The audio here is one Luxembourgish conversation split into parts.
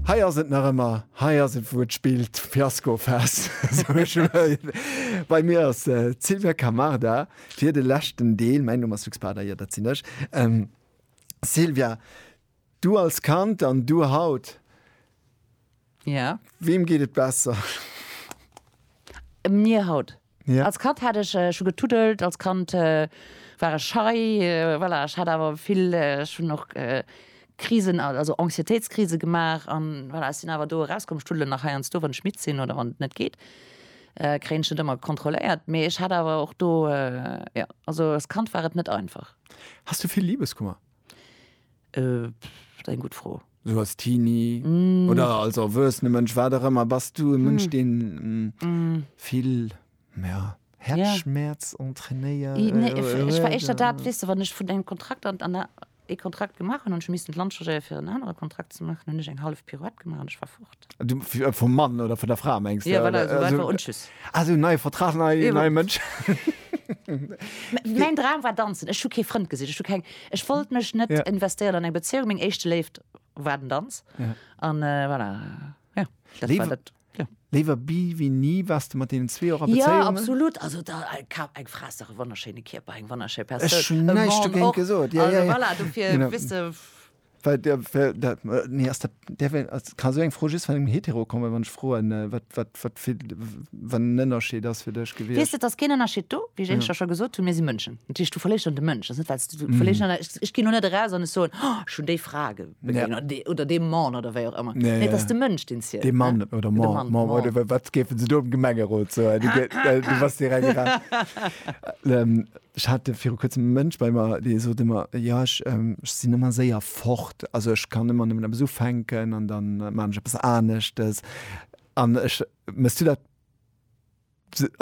Hei ass et nach ëmmer, hei ass et wou et spillt, Fiaskofest. Bei mir ass d'Silvia Camarda fir de leschten Deel. Mäin Numm ass Luc Spada, jo dat sinn ech. Silvia, du als Kand an du haut, Ja. Weem geet et besser? Mir haut. Als Kand hat ech scho getuddelt, als Kand war ech schei, voilà, ech hat awer vill, ech hunn och Krisen, also Anxiétéitskrise gemaach an voilà, ech sinn awer do erauskomm. Ech tuddelen nach heiansdo, wann ech midd sinn oder wann et net geet, kréien ech net ëmmer kontrolléiert, mee ech hat awer och do, jo, also als Kand war et net einfach. Has du vill Libeskummer? Äh, eng gutt Fro. Sou als Teenie mm. oder als erwuessene Mënsch, wat der ëmmer, bass du e Mënsch, mm. deen mm, mm. vill ja, Herzschmerz ja. entrainéiert? I, nee, äh, ich, ich war echt dat, wis du, wann ech vun engem Kontrakt an, an der, e Kontrakt gemacht an ech missten Land changéier fir en anere Kontrakt ze machen, hunn ech eng half Pirouette gemacht an ech war fort. Vum Mann oder vun der Fra mengs de? Ja, voilà, esou einfach un tschüss. Ah, esou neie Vertrag, nei, nei Mënsch. Mäin Dram war danzen. Ech hu kee Frënd gesicht, ech hu keng, ech wollt mech net investéieren an eng Bezéiung. Meng éischte Léift war den Danz an voilà, jo, dat war dat. Léiwer bi wéi ni. Waars de mat deenen zwee och a Bezéiungen? Jo, absolut. Also da, eng Fra ass dach e wonnerschéine Kierper, eng wonnerschéi Persoun. Ech hunn näischt dogéint gesot. Voilà, dofir, wëss de. Well der, well der, äh, nee, ass dat, der, well, ass, kann so eng Fro just van engem Hetero kommen, wann ech froen, äh, wat, wat, wat fir, wann en Ënnerscheed ass fir dech Wees gewiescht? de, et ass keen Ënnerscheed do, wéi ech énglech da scho gesot hunn, mir si Mënschen. Natierlech, du verléiers dann de Mënsch, ass net, well s du du verléiers dann, ech, ech ginn lo net eraus an ech soen, oh, ech hunn déi Fra ge, Mhm. Ja. begéint, oder dee, oder dee Mann, oder wéi och ëmmer. Nee, Nee, et ja. ass de Mënsch, deen zielt, De Mann ne? oder De Mann, Mann, Mann, Mann. oder wa- wat géifen se do am Gemengerot soen? Du, ge- äh, du was direkt ra- ähm, Ech hat viru kuerzem e Mënsch bei mer, dee sot ëmmer, Jo, ech sinn ëmmer séier fort. Also ech kann ëmmer nëmmen eppes ufänken an da maachen ech eppes aneschtes. An ech, méchs du dat,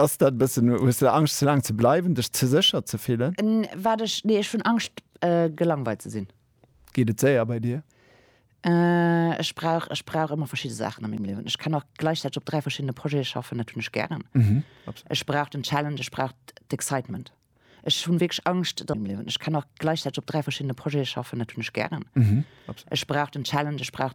ass dat e bëssen, hues du Angscht ze laang ze bleiwen, dech ze sécher ze fillen? Wat ech, nee, ech hunn Angscht gelangweilt ze sinn. Geet et séier bei dir? Ech brauch, ech brauch ëmmer verschidde Saachen a mengem Liewen. Ech kann och gläichzäiteg op dräi verschiddene Projete schaffen, dat hunn ech gären. Ech brauch den Challenge, ech brauch d'Excitement. Ech hunn wierklech Angscht am Liewen. Ech kann och gläichzäiteg op dräi verschiddene Projete schaffen, dat hunn ech gären. Ech brauch den Challenge, ech brauch.